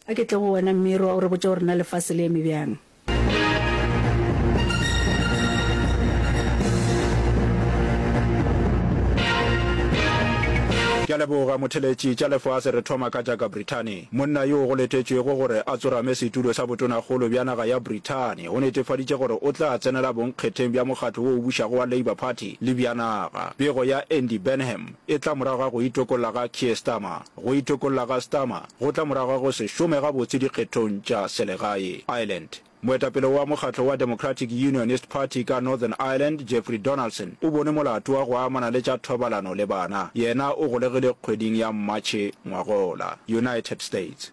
A ke tle go wena mme roa o re botša gore na lefase le eme bjang. Ke a leboga motheletši. Tša lefase re thoma ka tša ka Brithani. Monna yoo go letetšwego gore a tsorame setulo sa botonakgolo bja naga ya Brithani o netefaditše gore o tla tsenela bonkgetheng bja mokgatlo wo o bušago wa Labour Party le bja naga. Pego ya Andy Burnham. e tla morago ga go itokolla ga Keir Starmer. Go itokolla ga Starmer go tla morago ga go se šome gabotse dikgethong tša selegae Ireland. Moetapele wa mokgatlo wa Democratic Unionist Party ka Northern Ireland, Jeffrey Donaldson, o bone molato wa go amana le tša thobalano le bana. Yena o golegile kgweding ya Matšhe ngwagola, United States.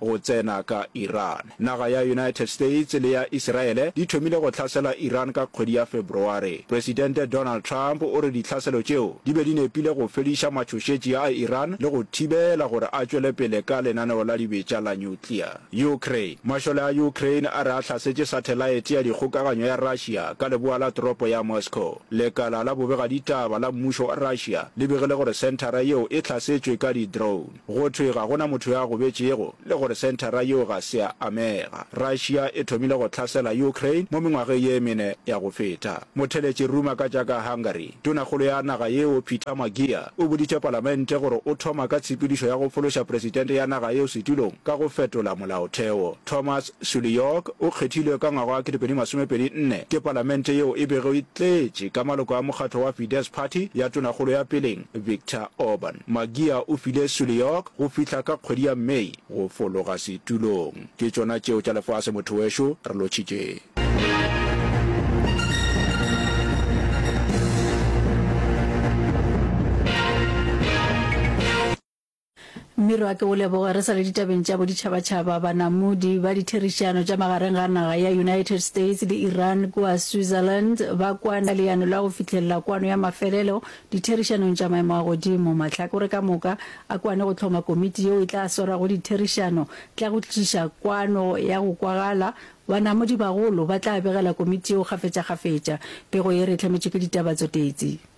go tsena ka Iran. Naga ya United States le ya Iseraele di thomile go hlasela Iran ka kgwedi ya February. Presidente Donald Trump o re ditlhaselo tšeo di be di nepile go fediša matšhošetši a Iran le go thibela gore a tšwele pele ka lenaneo la dibetša la nuclear. Ukraine. Mašole a Ukraine a re a hlasetše sathelaete ya dikgokaganyo ya Russia ka leboa la toropo ya Moscow. Lekala la bobegaditaba la mmušo wa Russia le begile gore senthara yeo e hlasetšwe ka di-drone. Go thwe ga go na motho yo a gobetšego le gore senthara yeo ga se ya amega. Russia e thomile go tlhasela Ukraine mo mengwageng ye mene ya go feta. Motheletši ruma ka tša ka Hungary, tonakgolo ya naga yeo Peter Magyar o boditše palamente gore o thoma ka tshepedišo ya go fološa presidente ya naga yeo setulong ka go fetola molaotheo. Thomas Sulyok o kgethilwe ka ngwaga wa 2024 ke palamente yeo e bego e tletše ka maloko a mokgatlo wa Fidesz Party ya tonakgolo ya peleng, Viktor Orban, Magyar o file Sulyok go fihla ka kgwedi ya May go fologa setulong. Ke tšona tšeo tša lefase motho wešo, re lotšhitše. Mmiro a ke o leboge. Re sa le ditabeng tša boditšhabatšhaba, banamodi ba ditherišano tša magareng ga naga ya United States le Iran kua Switzerland ba kwane ka leano la go fihlelela kwano ya mafelelo ditherišanong tša maemo a godimo. Mahlakore ka moka a kwane go hloma komiti yeo e tla swarago ditherišano tla go tliša kwano ya go kwagala. Banamodi bagolo ba tla begela komiti yeo kgafetšakgafetša. Pego ye re e hlametšwe ke ditaba tsotetsi.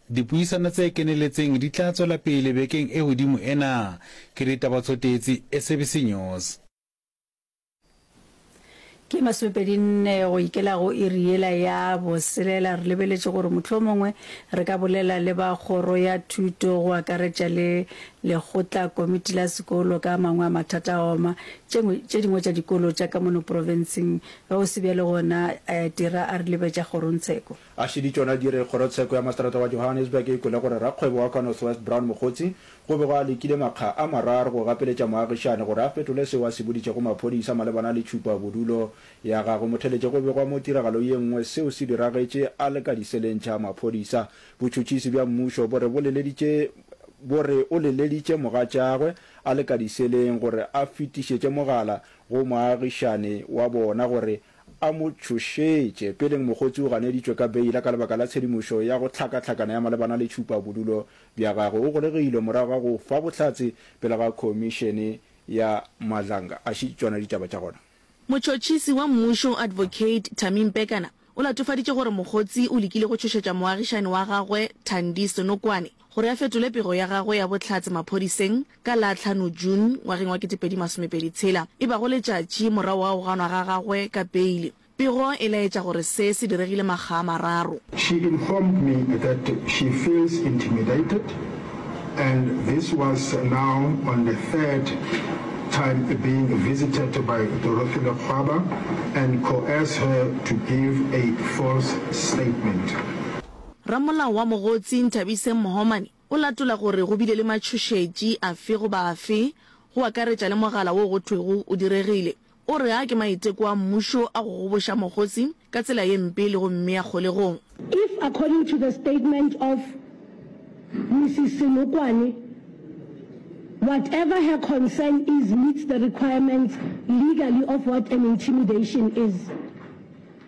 Dipuisano tse keneletseng di tla tswela pele bekeng e godimo ena. Ke ditaba tsotetsi SABC News. Ke masomepedi nne go ikela go iri yela ya boselela. Re lebeletše gore mohlomongwe re ka bolela le ba kgoro ya thuto go akaretša le lekgotla komiti la sekolo ka a mangwe a mathata a oma tše dingwe tša dikolo tša ka mono profenseng. Ge go se bjalo gona Tira a re lebetša kgorongtsheko. A šedi tšona di re kgorotsheko ya maseterata wa Johannesburg e kwele gore rakgwebo wa kwa North West Brown Mokgotsi go be go a lekile makga a mararo go gapeletša moagišane gore a fetole seo a se boditšego maphodisa malebana le tšhupa bodulo ya gagwe. Motheletše go begwa mo tiragalo ye nngwe seo se diragetše a le ka diseleng tša maphodisa. Botšhotšhisi bja mmušo bo re bo leleditše bo re o leleditše mogatšagwe a le ka diseleng gore a fetišetše mogala go moagišane wa bona gore a mo tšhošetše. Peleng mokgotsi o ganeditšwe ka beila ka lebaka la tshedimošo ya go hlakahlakana ya malebana le tšhupabodulo bja gagwe. O golegilwe morago ga go fa bohlatse pele ga khomišene ya Madlanga. A šetše tšona ditaba tša gona. Motšhotšhisi wa mmušo Advocate Thami Mpekana o latofaditše gore mokgotsi o lekile go tšhošetša moagišani wa gagwe Thandi Senokwane gore a fetole pego ya gagwe ya bohlatse maphodiseng ka la tlhano June ngwageng wa kete pedi masome pedi tshela, e bago letšatši morago ga go ganwa ga gagwe ka beile. Pego e laetša gore se se diregile makga a mararo. She informed me that she feels intimidated and this was now on the third time being visited by Dorothy Lekgwaba and coerce her to give a false statement. Ramolao wa mogotsi Nthabiseng Mohomane O latola gore go bile le matšhošetši afe goba afe, go akaretša le mogala wo go thwego o diregile. O re a ke maiteko a mmušo a go goboša Mogosi ka tsela ye mpe le go mmea kgolegong. If according to the statement of Mrs Senokwane, whatever her concern is meets the requirements legally of what an intimidation is,